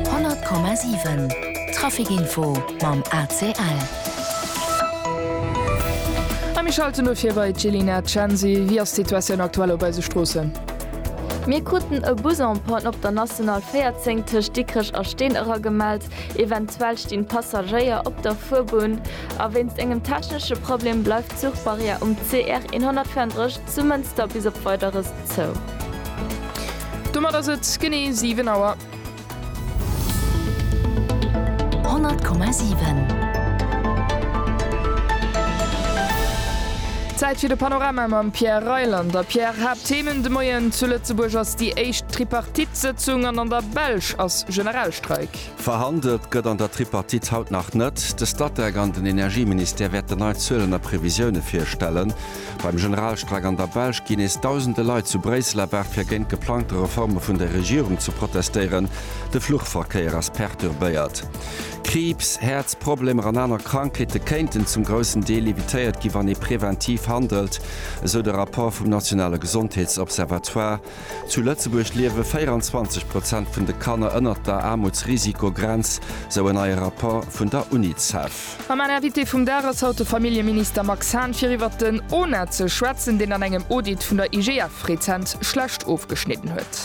100,7 Trafic Info mam ACL. A mir schalte lo vir bei d'Jelina Censi. Wéi ass d'Situatioun aktuell op eise Stroossen? Mir kruten e Bus en panne op der National 14 tëscht Dikrech a Steen eragemellt. Eventuell stinn Passagéier op der Fuerbunn. A wéinst engem technesche Problem bleift d'Zuchbarrière um CR 134 zu Mënster bis op Weideres zou. Domat ass et genee 7 Auer. 100,7. Zäit fir de Panorama mam Pierre Reyland a Pierre, Haapttheemen de Moien, Zu Lëtzebuerg ass déi éischt Tripartite-Sëtzung an an der Belsch ass Generalstreik. Verhandelt gëtt an der Tripartite haut nach net. De Statec an den Energieministère wäerten nei Zuelen a Previsioune virstellen. Beim Generalstreik an der Belsch ginn nees Dausende Leit zu Bréissel erwaart fir géint geplangte Reforme vun der Regierung ze protestéieren. De Fluchverkéier ass perturbéiert. Kriibs, Häerzproblemer an aner Krankheete kéinten zum groussen Deel evitéiert ginn, wann ee preventiv handelt, esou de Rapport vum nationale Gesondheetsobservatoire. Zu Lëtzebuerg liewe 24 Prozent vun de Kanner ënnert der Aarmutsrisikogrenz, sou en neie Rapport vun der Unicef. A mäin Invité vum Dag ass haut de Familljeminister Max Hahn, fir iwwert den ONA ze schwätzen, deen an engem Audit vun der IGF rezent schlecht ofgeschnidden huet.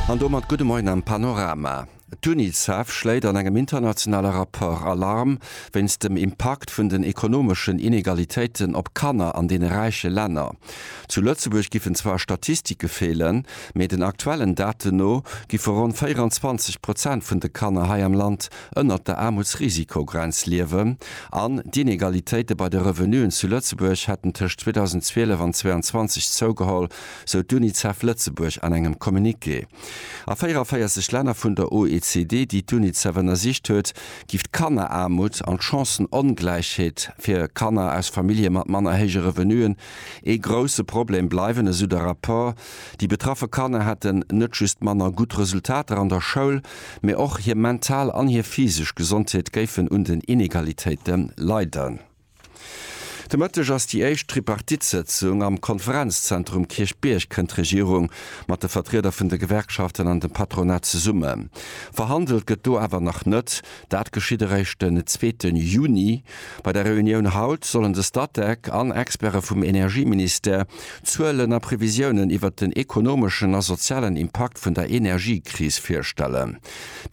An domat gudde Moien am Panorama. D'Unicef schléit an engem internationale Rapport Alarm wéinst dem Impakt vun den ekonomeschen Inegalitéiten op Kanner an deene räiche Länner. Zu Lëtzebuerg giffen zwar Statistike feelen, mee den aktuellen Daten no giffe ronn 24 Prozent vun de Kanner hei am Land ënnert der Aarmutsrisikogrenz liewen an d'Inegalitéite bei de Revenuen zu Lëtzebuerg hätten tëscht 2012 an 2022 zougeholl, sou d'Unicef Lëtzebuerg an engem Communiqué. A 44 Länner vun der OECD, déi d'UNICEF ënnersicht huet, géif d'Kanneraarmut an d'Chancen-Ongläichheet fir Kanner aus Famillje mat manner héije Revenuen ee grousse Problem bleiwen, esou de Rapport. Déi betraffe Kanner hätten net just manner gutt Resultater an der Schoul, mee och hir mental an hir physesch Gesondheet géifen un den Inegalitéite leiden. De Mëtteg ass déi éischt Tripartite-Sëtzung am Konferenzzentrum Kierchbierg. Kënnt d'Regierung mat de Vertrieder vun de Gewerkschaften an dem Patronat zesummen? Verhandelt gëtt do awer nach net. Dat geschitt eréischt den zweete Juni. Bei der Reunioun haut sollen de Statec an Experte vum Energieministère Zuelen a Previsiounen iwwert den ekonomeschen a sozialen Impakt vun der Energiekris virstellen.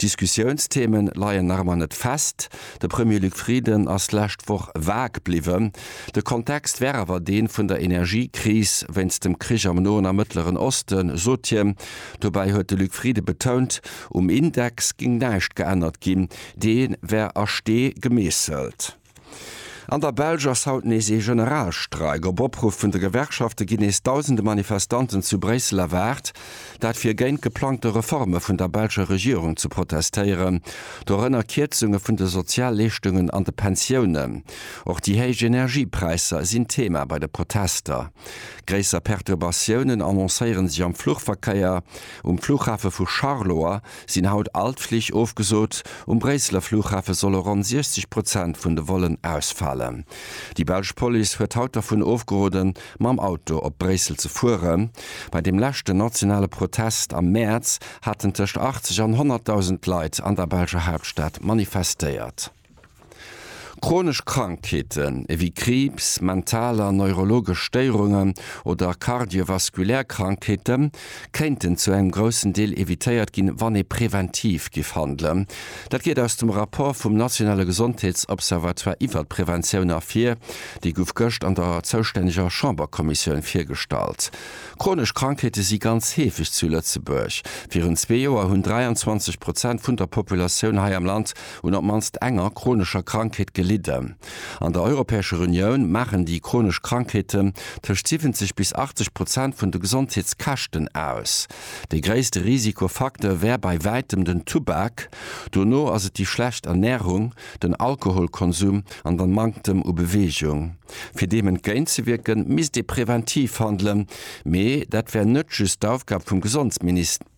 Diskussiounsthemen leien nach ëmmer net fest. De Premier Luc Frieden ass d'lescht Woch vag bliwwen. De Kontext wär awer dee vun der Energiekris wéinst dem Krich am Noen a Mëttleren Osten, sot hien. Dobäi huet de Luc Frieden betount, um Index géing näischt geännert ginn, dee wär a Stee gemeesselt. An der Belsch ass haut nees ee Generalstreik. Op Opruff vun de Gewerkschafte ginn nees dausende Manifestanten zu Bréissel erwaart. Dat fir géint d'geplangte Reforme vun der belscher Regierung ze protestéieren, dorënner Kierzunge vun de Sozialleeschtungen an de Pensiounen. Och déi héich Energiepräisser sinn Thema bei de Protester. Gréisser Perturbatiounen annoncéiere sech am Fluchverkéier. Um Flughafe vu Charleroi sinn haut all d'Flich ofgesot. Um Bréisseler Flughafe solle ronn 60 Prozent vun de Vollen ausfalen. Déi belsch Police huet haut dervun ofgeroden, Mam Auto op Bréissel ze fueren. Bei deem leschten nationale Protest am Mäerz haten tëscht 80 an 100.000 Leit an der belscher Haaptstad manifestéiert. Chronesch Krankheeten, ewéi Kriibs, mental an neurologesch Stéierungen oder kardiovaskulär Krankheeten, kéinten zu engem groussen Deel evitéiert ginn, wann ee preventiv giff handelen. Dat geet aus dem Rapport vum nationale Gesondheetsobservatoire iwwert d'Preventioun ervir. Dee guff gëscht an der zoustänneger Chamberkommissioun virgestallt. Chronesch Krankheete si ganz heefeg zu Lëtzebuerg. Virun zwee Joer hunn 23 Prozent vun der Populatioun hei am Land un op d'mannst enger chronescher Krankheet gelidden. An der Europäescher Unioun maachen déi chronesch Krankheeten tëscht 70 bis 80 Prozent vun de Gesondheetskäschten aus. Dee gréisste Risikofacteur wär bei wäitem den Tubak, dono ass et déi schlecht Ernärung, den Alkoholkonsum an den Manktem u Beweegung. Fir deem entgéintzewierken, misst ee preventiv handelen, mee dat wär net just d'Aufgab vum Gesondesministère.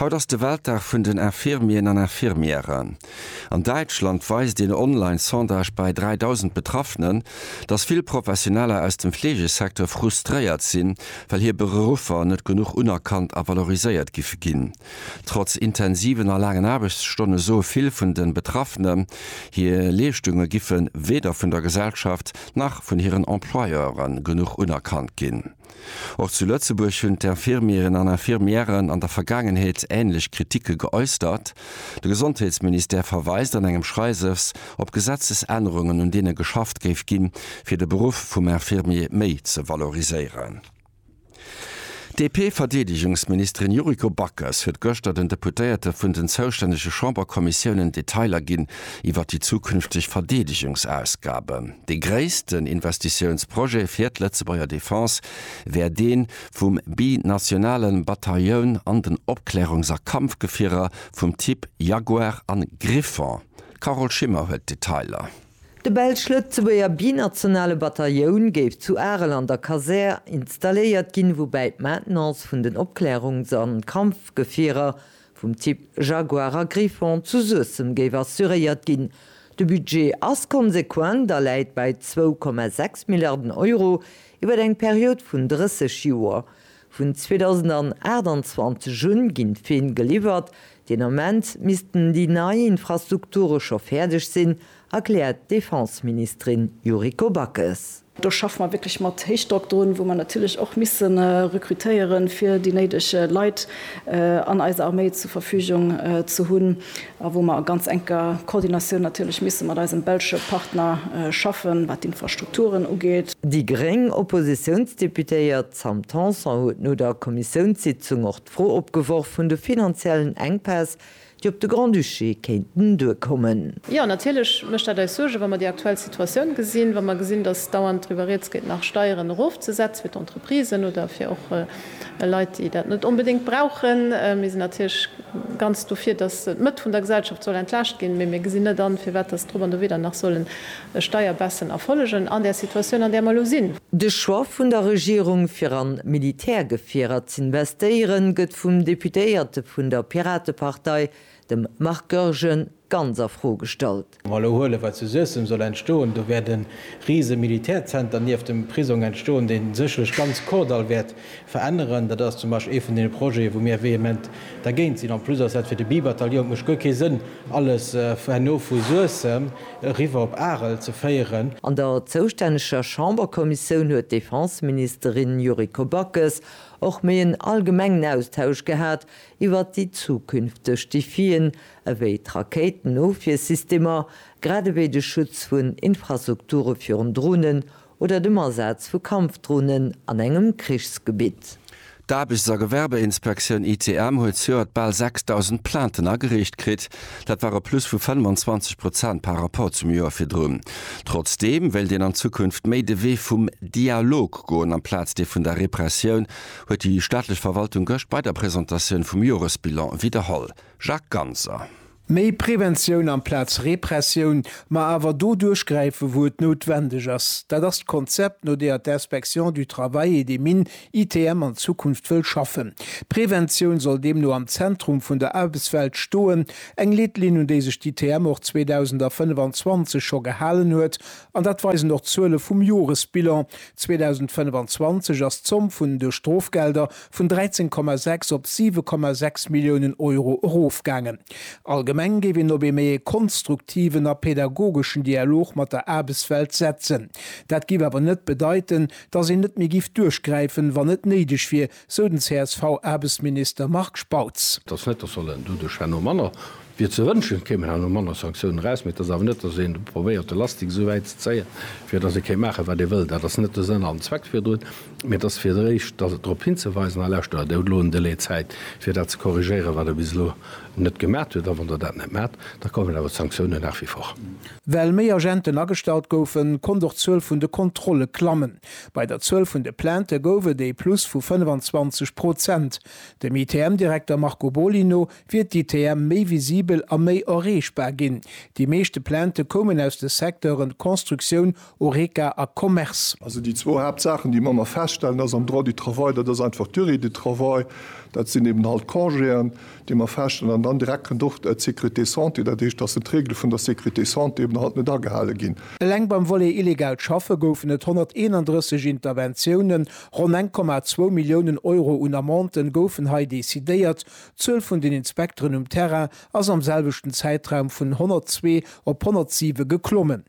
Haut ass de Weltdag vun den Infirmieren an Infirmièren. An Däitschland weist een online Sondage bei 3.000 Betraffenen, dass vill Professioneller aus dem Fleegesecteur frustréiert sinn, well hir Beruffer net genuch unerkannt a valoriséiert giffe ginn. Trotz intensiven a laangen Aarbechtsstonne soe vill vun de Betraffenen, hir Leeschtunge giffe weder vun der Gesellschaft nach vun hiren Employeure genuch unerkannt ginn. Och zu Lëtzebuerg hunn d'Infirmieren an Infirmièren an der Vergaangenheet änlech Kritike geäustert. De Gesondheetsministère verweist an engem Schreiwes op Gesetzesännerungen, un deene geschafft géif ginn, fir de Beruff vum Infirmier méi ze valoriséieren. D'DP-Verdeedegungsministerin Yuriko Backes huet gëschter den Deputéierte vun den zoustännege Chamberkommissiounen Detailer ginn, iwwer déi zukünfteg Verdeedegungsausgaben. Dee gréissten Investitiounsprojet fir d'Lëtzebuerger Defense wär dee vum binationale Batailloun an den Opklärungs a Kampfgefierer vum Typ Jaguar a Griffon. D'Carole Schimmer huet d'Detailer. De belsch-lëtzebuerger binationale Batailloun géif zu Arel an der Kasär installéiert ginn, woubäi d'Maintenance vun den Opklärungs a Kampfgefierer vum Typ Jaguar a Griffon zu Suessem géif assuréiert ginn. De Budget ass konsequent a läit bei 2,6 Milliarden Euro iwwer eng Period vun 30 Joer. Vun 2028 un ginn d'Feen geliwwert. Deen Ament missten déi nei Infrastrukture scho fäerdeg sinn erkläert d'Defenseministerin Yuriko Backes. Do schaffe mer wierklech mat Héichdrock drun, wou mer natierlech och misse rekrutéieren, fir déi néideg Leit an eiser Arméi zur Verfügung ze hunn, a wou mer a ganz enker Koordinatioun natierlech misse mat eisem belsche Partner schaffen, wat d'Infrastrukturen ugeet. Déi gréng Oppositiounsdeputéiert Sam Tanson huet no der Kommissiounssitzung och d'Fro opgeworf vun de finanziellen Enkpäss, déi op de Grand-Duché kéinten duerkommen. Jo, natierlech mécht dat eis Suergen, wa mer déi aktuell Situatioun gesinn, wa mer gesinn, datt dauernd driwwer rieds geet, nach Steieren erofzesetzen fir d'Entreprisen oder fir och Leit, déi dat net onbedéngt brauchen. Mir sinn natierlech ganz dofir, datt d'Mëtt vun der Gesellschaft soll entlaascht ginn, mee mir gesinn net an, firwat datt drop an dowéi dann nach sollen e Steierbaisse erfollegen an där Situatioun, an där mer elo sinn. De Choix vun der Regierung, fir an Militärgefierer z'investéieren, gëtt vum Deputéierte vun der Piratepartei, dem Marc Goergen, ganz a Fro gestallt. Wa mer elo huelen, wat zu Suessem soll entstoen, do wäert e rise Militärzenter nieft dem Prisong entstoen, dee sécherlech ganz Kordall wäert Veränneren. Dat ass zum Beispill ee vun deene Projeten, wou mir vehement dergéint sinn. En plus ass dat fir de Bi-Bataillon, et mécht guer kee Sënn, alles herno vu Suessem eriwwer op Arel ze féieren. An der zoustänneger Chamberkommissioun huet d'Defenseministerin Yuriko Backes och méi en allgemengen Austausch gehat iwwert déi zukünfteg Defien, ewéi d'Rakéitenofwiersystemer, grad ewéi de Schutz vun Infrastrukture virun Dronen oder dem Asaz vu Kampfdronen an engem Krichsgebitt. D'Aarbechts a Gewerbeinspektioun, ITM, huet zejoert bal 6.000 Plainten agereecht kritt. Dat war e Plus vu 25 Prozent par Rapport zum Joer virdrun. Trotzdeem wéilt een an Zukunft méi de Wee vum Dialog goen amplaz dee vun der Repressioun, huet déi staatlech Verwaltung gëscht bei der Presentatioun vum Joresbilan widderholl. Jacques Ganser. Méi Preventioun amplaz Repressioun, ma awer do duerchgräife wou et noutwendeg ass, dat ass d'Konzept no deeër d'Inspection du Travail et des Mines, ITM, an Zukunft wëll schaffen. D'Preventioun soll deemno am Zentrum vun der Aarbechtswelt stoen, eng Leetlinn un déi sech d'ITM och 2025 scho gehalen huet, an dat weisen och d'Zuele vum Joresbilan, 2025 ass d'Zomm vun de Strofgelder vun 13,6 op 7,6 Milliounen Euro erofgaangen. Allgemeng géif een op ee méi ee konstruktiven a pädagogeschen Dialog mat der Aarbechtswelt setzen. Dat géif awer net bedeiten, datt een net méi géif duerchgräifen, wann et néideg wier, sou den CSV-Aarbechtsminister Marc Spautz. Et ass net, datt solle doduerch herno manner, wier ze wënschen, et kéimen herno manner Sanktiounen eraus, mee et ass awer net, datt een probéiert de Lastik esou wäit ze zéien, fir datt ee kéint maachen, wat ee wëll. Dat ass net de Sënn an Zweck virdrun. Mee et ass fir d'éischt drop hinzeweisen, a lauschtert, Der hutt elo en Delai Zäit, fir dat ze korrigéieren, wat Der bis elo net gemat hutt. A wann Der dat net mat, da kommen awer d'Sanktiounen nach wie vor. Well méi Agenten agestallt goufen, konnt och d'Zuel vun de Kontrolle klammen. Bei der Zuel vun de Plaintë gouf et ee Plus vu 25 Prozent. Dem ITM-Direkter Marco Boly no wier d'ITM méi visibel a méi erreechbar ginn. Déi meeschte Plaintë koumen aus de Secteure Constructioun, Horeca a Commerce. Also déi zwou Haaptsaachen, déi mer ëmmer feststellen, dass am Droit du travail, dat ass einfach d'Durée du travail, dat sinn eben halt d'Congéen, déi mer feststellen, an dann direkt kënnt och d'Sécurité santé, dat heescht, dass d'Regele vun der Sécurité santé eben halt net agehale ginn. Eleng beim Volet illegaalt Schaffe goufen et 131 Interventiounen, ronn 1,2 Milliounen Euro un Amenden goufen hei decidéiert. D'Zuel vun den Inspekteren um Terrain ass am selwechten Zäitraum vun 102 op 107 geklommen.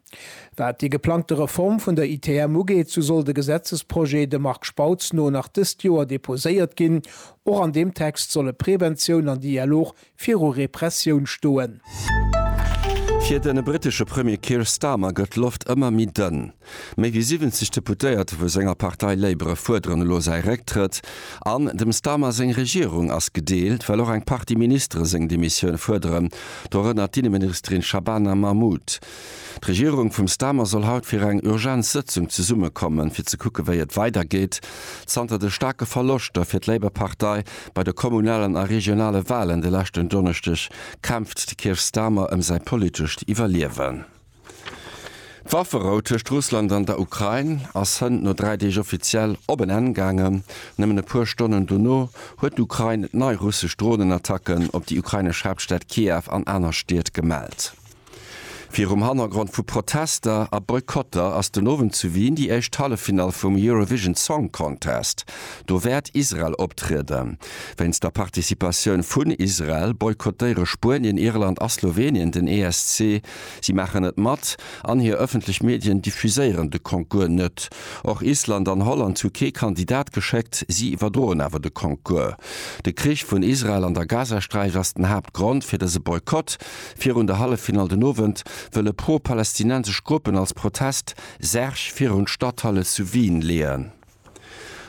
Wat déi geplangte Reform vun der ITM ugeet, sou soll de Gesetzesprojet dem Marc Spautz no nach dëst Joer deposéiert ginn. Och an deem Text solle Preventioun an Dialog viru Repressioun stoen. Fir de brittesche Premier Keir Starmer gëtt d'Loft ëmmer méi dënn. Méi wéi 70 Deputéierte vu senger Partei Labour fuerderen elo säi Récktrëtt. An dem Starmer seng Regierung ass gedeelt, well och eng Partie Ministere seng Demissioun fuerderen, dorënner d'Inneministerin Shabana Mahmood. D'Regierung vum Starmer soll haut fir eng Urgenzsëtzung zesummekommen, fir ze kucken, wéi et weidergeet. Zanter de staarke Verloschter fir d'Labour-Partei bei de kommunalen a regionale Walen de leschten Donneschdeg kämpft de Keir Starmer ëm säi politescht Iwwerliewen. D'Wafferou tëscht Russland an der Ukrain ass hënt no dräi Deeg offiziell op en Enn gaangen. Nëmmen e puer Stonnen dono huet d'Ukrain nei russesch Dronenattacken op déi ukrainesch Haaptstad Kiew an aner Stied gemellt. Virum Hannergrond vu Protester a Boykotter ass den Owend zu Wien déi éischt Halleffinall vum Eurovision Song Contest. Do wäert Israel optrieden. Wéinst der Participatioun vun Israel boykottéiere Spuenien, Irland a Slowenien den ESC. Si maachen net mat an hir ëffentlech Medien diffuséieren de Concours net. Och Island an Holland hu kee Kandidat geschéckt, si iwwerdroen awer de Concours. De Krich vun Israel an der Gazasträif ass den Haaptgrond fir dëse Boykott, Virun der Halleffinall den Owend wëlle pro-palästinensesch Gruppen als Protest Särg virun d'Stadthalle zu Wien leeën.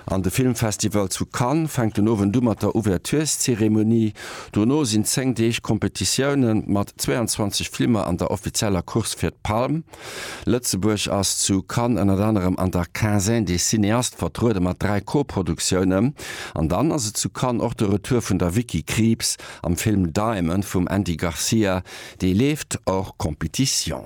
An de Filmfestival zu Cannes fänkt den Owend u mat der Ouvertureszeremonie. Dono sinn 10 Deeg Competitioune mat 22 Flimmer an der offizieller Course fir d'Palm. Lëtzebuerg ass zu Cannes ënnert anerem an der Quinzaine des cinéastes vertruede mat 3 Co-Produktioune. An dann ass et zu Cannes och de Retour vun der Vicky Krieps Am Film Diamond vum Andy Garcia, dee leeft hors compétition.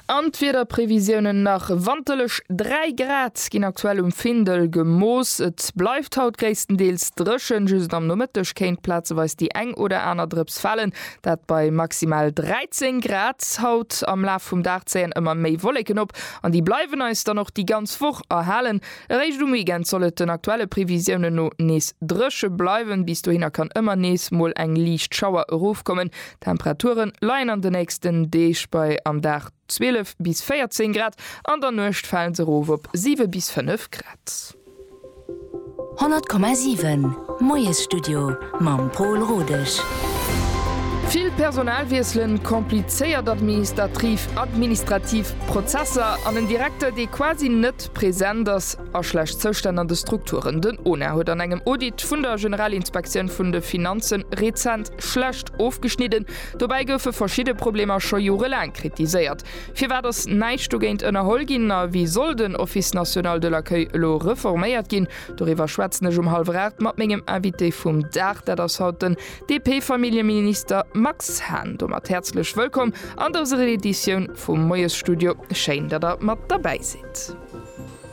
An d'Wiederprevisiounen nach, Wanterlech 3 Grad ginn aktuell um Findel gemooss. Et bleift haut gréisstendeels dréchen, just am Nomëtteg kéint plazeweis déi eng oder aner Drëps falen, dat bei maximal 13 Grad. Haut am Laf vum Dag zéien ëmmer méi Wolleken op an déi bleiwen eis dann och déi ganz Woch erhalen. Eréischt um Weekend soll et den aktuelle Previsiounen no nees dréche bleiwen. Bis dohinner kann ëmmer nees mol eng liicht Schauer erofkommen. D'Temperature leien an de nächsten Deeg bei am Dag 12 bis 14 Grad, an der Nuecht fale se erof op 7 bis 5 Grad. 100,7 Moiesstudio mam Pol Rodesch. Vill Personal wiesselen, komplizéiert administatriv administrativ Prozesser an en Direkter, dee quasi net. Present ass a schlecht Zoustänn an de Strukturen. Den ONA huet an engem Audit vun der Generalinspektioun vun de Finanzen rezent schlecht ofgeschnidden. Dobäi goufe verschidde Problemer scho jorelaang kritiséiert. Firwat ass näischt dogéint ënnerholl ginn a wéi soll den Office national de l'accueil elo reforméiert ginn? Doriwwer schwätzen ech um Hallwer Aacht mat mengem Invité vum Dag, dat ass haut den DP-Familljeminister Max Hahn domat häerzlech wëllkomm an dëser Editioun vum Moiesstudio. Schéin, datt Der mat derbäi sidd.